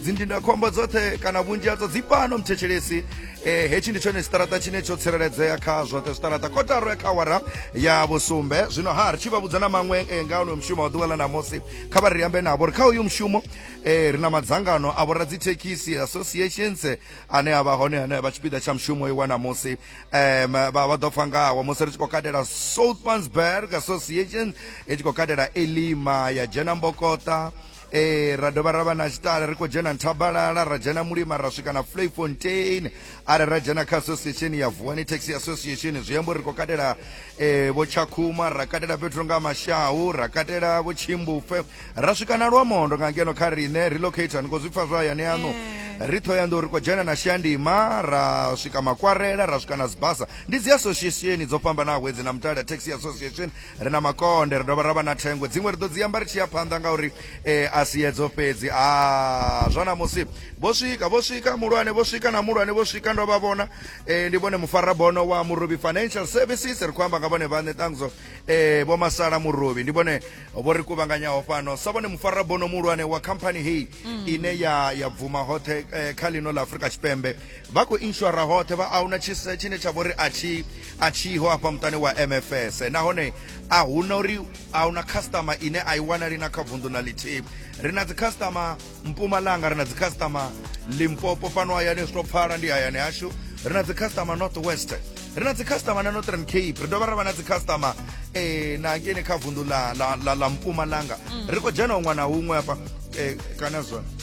dzindindakhombo dzoṱhe kana vhunzhi hadzo dzi fhano mthetshelesi eh, hetshi ndi tshone tshiṱaraṱa tshine tsho tsireledzea kha zwoṱhe zwiṱaraṱa kotaro ya kha wara ya vhusumbe zwino ha ri tshi vha vhudza na maṅwe eh, nga onoyo mushumo wa ḓuvha ḽa namusi kha vha ri ambe navho ri kha uyu mushumo eh, ri na madzangano a vhora dzithekhisi associations ane a vha hone ane vha tshipiḓa tsha mushumo iwa namusi um, vha vha ḓo pfa ngawo musi ri tshi khou katela southmansburg association i tshi khou katela elima ya dzhena mbokota ee ra dovha ra vha na tshitale ri khou dzhena nthabalala ra dzhena mulima ra swika na flayfontein are ra dzhena kha association ya vuwani taxi association zwi amba uri ri khou katela eh, vho tshakhuma ra katela fhethu nga mashahu ra katela vho tshimbufe ra swika na lwamondo nga ngeno kha riṋe relocate ni khou zwi pfa zwa hayani aṋu ri thoyando ri khou dzhena na shandima ra swika makwarela ra swika na sibasa ndi dzi association dzo fhambanaho hedzi na mutale taxi association Ri na makonde, ri dovha ra vha na thengwe. Dziṅwe ri ḓo dzi amba ri tshi ya phanḓa ngauri e, a si edzo fhedzi. A zwa ṋamusi vho swika, vho swika muhulwane, vho swika na muhulwane, vho swika ndo vha vhona. E, ndi vhone mufarabono wa Murobi Financial Services, ri khou amba nga vhone vhaṋe ṱangzo e, vho Masala Murobi. Ndi vhone vho ri kuvhanganyaho fhano sa vhone mufarabono muhulwane wa khamphani heyi mm. ine ya, ya bvuma hoṱhe e, kha ḽino ḽa Afrika Tshipembe. vha khou inshora hoṱhe vha ahuna tshise tshine tsha vhori a tshi a tshiho afha muṱani wa mfs nahone a huna uri a huna customer ine a i wanali na kha vunḓu na lithihi ri na dzi customer mpumalanga ri na dzi customer limpopo fhano hayani zwi to pfala ndi hayani hashu ri na dzi customer north west ri na dzi customer na northern cape ri dovha ra vha na dzi customer eh na ngene kha vundu la la la, la mpumalanga mm. ri khou dzhena huṅwe na huṅwe hafha eh kana zwone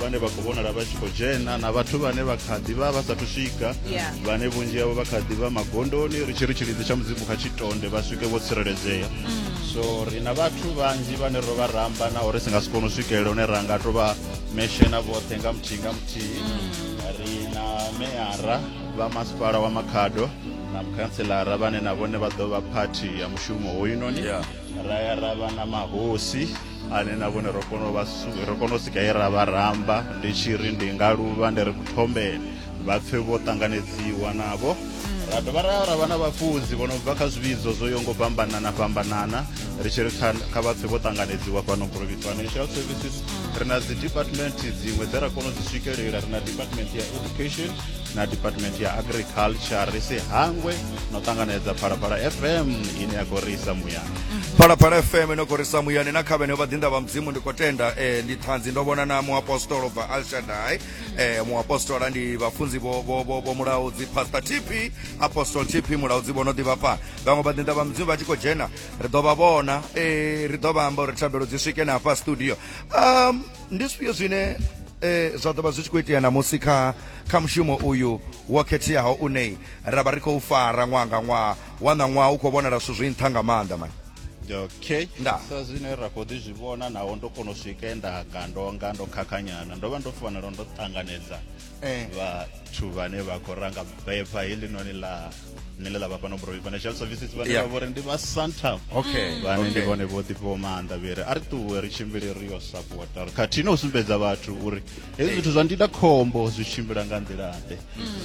vhane vha khou vhonala vha tshi khou dzhena na vhathu vhane vha kha ḓi vha vha sathu swika Yeah. vhane vhunzhi havho vha kha ḓi vha magondoni ri tshi ri tshilidzi tsha mudzimu kha tshitonde vha swike vho tsireledzea so ri na vhathu vhanzhi vhane ro vha ramba naho ri si nga si kone u swikelela hune ra nga to vha meshena vhoṱhe nga muthihi nga muthihi ri na meara vha masipala wa makhado na mukhanselara vhane na vhone vha ḓo vha phathi ya mushumo hoyunoni Yeah. ra ya ra vha na mahosi ane na vhone ro kona u vha ro kona u sika ye ra vha ramba ndi tshi ri ndi nga luvha ndi ri kuthombeni vha pfe vho ṱanganedziwa navho ra dovha ra ra vha na vhafunzi vho no bva kha zwivhidzo zwo yo ngo fhambanana fhambanana ri tshi ri kha vha pfe vho ṱanganedziwa fhano Broby Financial Services ri na dzi department dziṅwe dze ra kona u dzi swikelela ri na department ya education na department ya agriculture ri si hangwe no ṱanganedza phalaphala fm ine ya khou risa muyani mhm. phalaphala fm ino khou risa muyani na kha vheneo vhaḓinḓa vha mudzimu ndi khou tenda eh, ndi ṱhanzi ndo vhona na muapostolo bva alshadai mhm. eh, muapostola ndi vhafunzi vho mulaudzi pastor tp apostol tp mulaudzi vho no ḓivha fhano vhaṅwe vhaḓinḓa vha mudzimu vha tshi khou dzhena ri ḓo vha vhona eh, ri ḓo vha amba uri thabelo dzi swike na hafha studio um ndi zwifhio zwine um zwa ḓo vha zwi tshi khou itea na musi kha Kha mushumo uyu wo khetheaho une ra vha ri khou fara ṅwaha nga ṅwaha, wa ṋaṅwaha u khou vhonala zwithu zwi nṱha nga maanḓa. Man. Okay. Nda. Sa zwine ra khou ḓi zwi vhona, naho ndo kona u swika e nda ka ndo nga ndo khakhanyana, ndo vha ndo fanela ndo ṱanganedza Eh. vhathu vhane vha khou ranga bepha heḽinoni ḽa nile ḽa vha fhano Broy Financial Services vhane Yeah. vha vhori ndi vha Santam Okay, vhane ndi okay. vhone vho ḓifhiwa maanḓa vheri a ri ṱuwe ri tshimbile ri yo sapota ri khathihi na u sumbedza vhathu uri hezwi zwithu zwa ndida khombo zwi tshimbila nga nḓilaḓe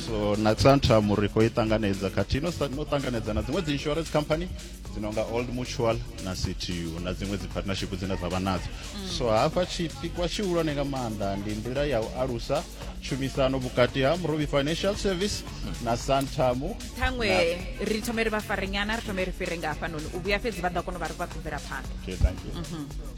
so na tantrum ri khou i ṱanganedza khathihi no sa- no ṱanganedza na dziṅwe dzi insurance company dzi no nga old mutual na ctu na dziṅwe dzi partnership dzine dza vha nadzo so hafha tshipikwa tshihulwane nga maanḓa ndi nḓila ya u alusa tshumisano vhukati ha murobi financial service na santamu ṱhaṅwe ri thome ri vha farenyana ri thome ri fhire nga hafhanoni u vhuya fhedzi vha ḓo kona u vha ri vha khou bvela phanḓa Okay, thank you.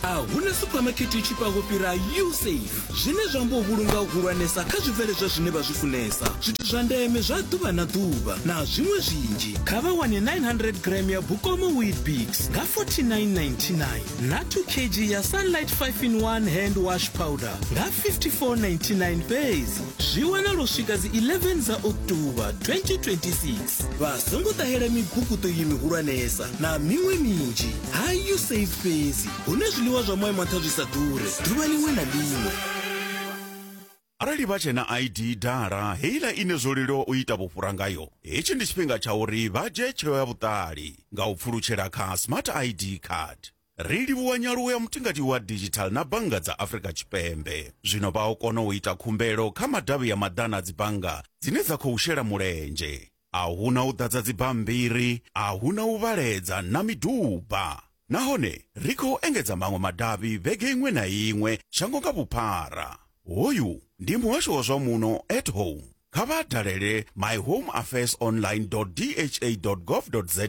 a hu na suphamakete i tshifhaho fhira usafe zwine zwa amba u vhulunga hu hulwanesa kha zwibveledzwa zwine vha zwi funesa zwithu zwa ndeme zwa ḓuvha na ḓuvha na zwiṅwe zwinzhi kha vha wane 900 gram ya bukomo weetbix nga 4999 na 2 kg ya sunlight 5 in 1 hand wash powder nga 5499 fhedzi zwi wanala u swika dzi 11 dza oktoba 2026 vha songo ṱahela mibukuṱo iyi mihulwanesa na miṅwe minzhi ha usaid fhedzi hune zwiḽiwa zwa moya maṱha zwi sa ḓure ḓuvha ḽiṅwe na ḽiṅwe arali vha tshena id dala heiḽa ine zwo leluwa u ita vhufhura ngayo hetshi ndi tshifhinga tsha uri vha dzhie tsheo ya vhuṱali nga u pfulutshela kha smart id card Ri livhuwa nyaluwo ya mutingati wa digital na bannga dza Afrika Tshipembe. Zwino vha o kona u ita khumbelo kha madavhi ya maḓana a dzibannga dzine dza khou shela mulenzhe. A hu na u ḓadza dzibammbiri, a hu na u vhaledza na miduba. Nahone ri khou engedza maṅwe madavhi vhege iṅwe na iṅwe shango nga vhuphara. Hoyu ndi muhasho wa zwa muno at home. Kha vha dalele myhomeaffairsonline.dha.gov.za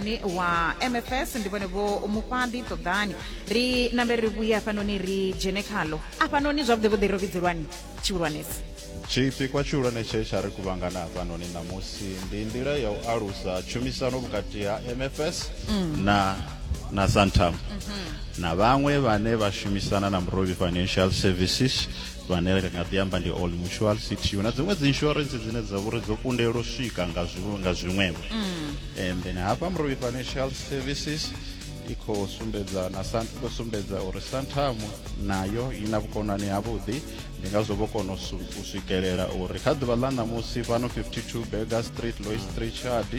ni wa mfs ndi vhone vho mufhaḓi ṱoḓani ri nambe ri vhuye hafhanoni ri dzhene khalo afhanoni zwavhuḓi vhuḓi ro vhidzelwani tshihulwanesi tshipikwa tshihulwane tshe tsha ri kuvhangana hafhanoni ṋamusi ndi nḓila ya u alusa tshumisano vhukati ha mfs na na santam na vhaṅwe vhane vha shumisana na murovhi financial services vhane ri nga ḓi amba ndi all mutual city na dziṅwe dzi insurance dzine dza vhori dzo kundelwa swika nga zwiṅwe nga zwiṅwevho mm. and then hafha mrovi financial services i khou sumbedza na khou sumbedza uri santam nayo i na vhukonani havhuḓi ndi ngazwo vho kona u swikelela uri kha ḓuvha ḽa ṋamusi fhano 52 burger street lois street chard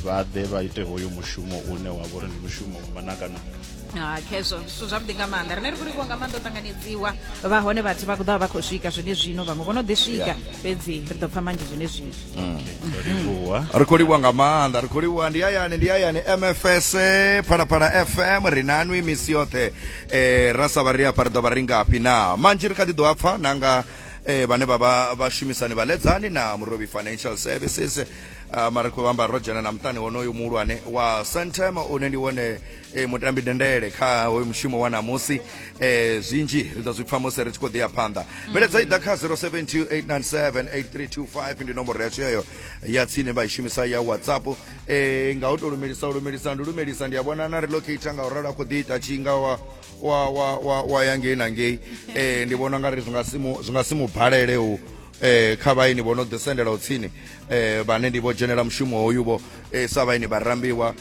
vha ḓe vha ite hoyo mushumo une wa vha uri ndi mushumo wa manakana ah, khezwo zwithu zwavhuḓi nga maanḓa rine ri khou livhuwa nga maanḓa u ṱanganedziwa vha hone vhathu vha ḓovha vha khou swika zwone zwino vhaṅwe vho no ḓi swika fhedzi ri ḓo pfa manzhi zwone zwino mm. ri khou livhuwa nga maanḓa ri khou livhuwa ndi hayani ndi hayani mfs phalaphala fm ri nanwi misi yoṱhe um ra sa vha ri afha ri ḓo vha ri ngafhi na manzhi ri kha ḓi ḓo a pfa nanga eh vhane vha vha vhashumisani vhaledzani na murobi financial services Uh, mara khou vhamba ro dzhena na muṱani wonoyu muhulwane wa santem une ndi wone e, mutambi dendele kha hoyu mushumo wa namusi e, zwinzhi ri ḓo zwi pfa musi ri tshi khou ḓiya phanḓa mveledzo i ḓa kha 0728978325 ndi nomboro yashu yeyo ya tsini vha i shumisa ya whatsapp e, nga u tou lumelisa u lumelisa ndi lumelisa ndi a vhona na relocata nga u ralo a khou ḓi ita tshinga wa wa wa wa, wa ya ngei na ngei e, ndi vhona nga ri zwi nga si mu- zwi nga si mu balele u eh kha vhaini vho no ḓi sendela tsini eh vhane ndi vho dzhenela mushumo hoyu vho eh sa vhaini vha rambiwa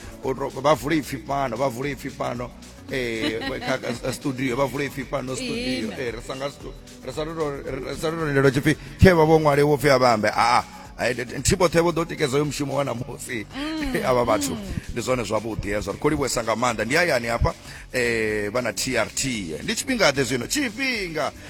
vha vule ipfi fhano vha vule ipfi fhano eh kha studio vha vule ipfi fhano studio eh ri sanga ri sa ro ri sa ro lindelo tshipfi khe vha vho ṅwale wo pfi a vhambe a a nthihi vhoṱhe vho ḓo tikedza yo mushumo wa namusi mm. avha vhathu ndi zwone zwavhuḓi hezwo ri khou livhuesa nga maanḓa ndi hayani hafha um vha na trt ndi tshifhinga ḓe zwino tshifhinga